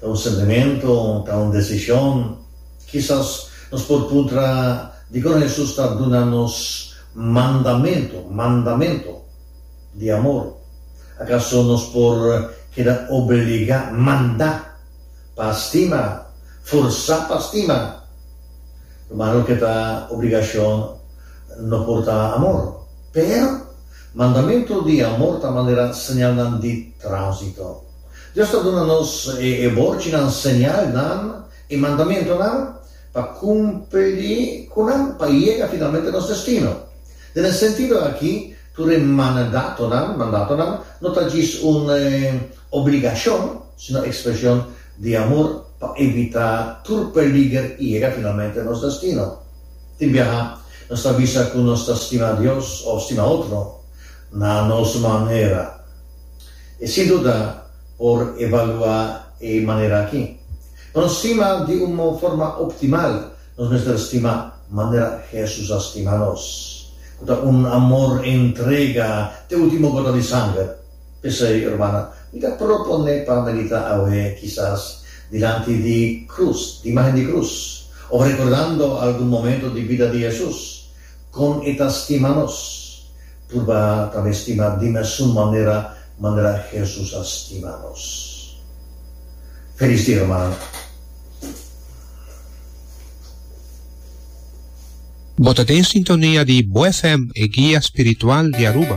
Ta un sentimentu? Ta un desishon? Kisas nos por puntra, Dikon Hesus ta duna nos mandamentu, mandamentu, di amor? Akaso nos por keda obeligá, mandá, pa stima, forsá pa stima? Rumannan, loke ta obligashon no por ta amor. Pero, mandamentu di amor ta manera señalnan di tránsito. Dios ta duna nos e borchinan señalnan i mandamentunan pa kumpli ku nan pa yega finalmente nos destino. Den e sentido aki, tur e manadatonan, mandatonan, no ta djis un obligashon, sino ekspreshon di amor pa evitá tur peliger i yega finalmente nos destino. Tin biaha nos ta bisa ku nos ta stima Dios òf stima otro na nos manera. E sin duda por evaluá e manera akí. Pa nos stima di un forma optimal, nos mester stima manera Hesus a stima nos, ku ta un amor entrega te último gota di sanger. P'esei, hermana, mi ta proponé pa meditá awe, kisas dilanti di krus, di imágen di krus, òf rekordando algun momentu di bida di Hesus. Kon e ta stima nos? Purba tambe stima di mesun manera manera Hesus a stima nos. Felis dia hermano. Bo ta den sintonia di BoFm, e guia spiritual di Aruba.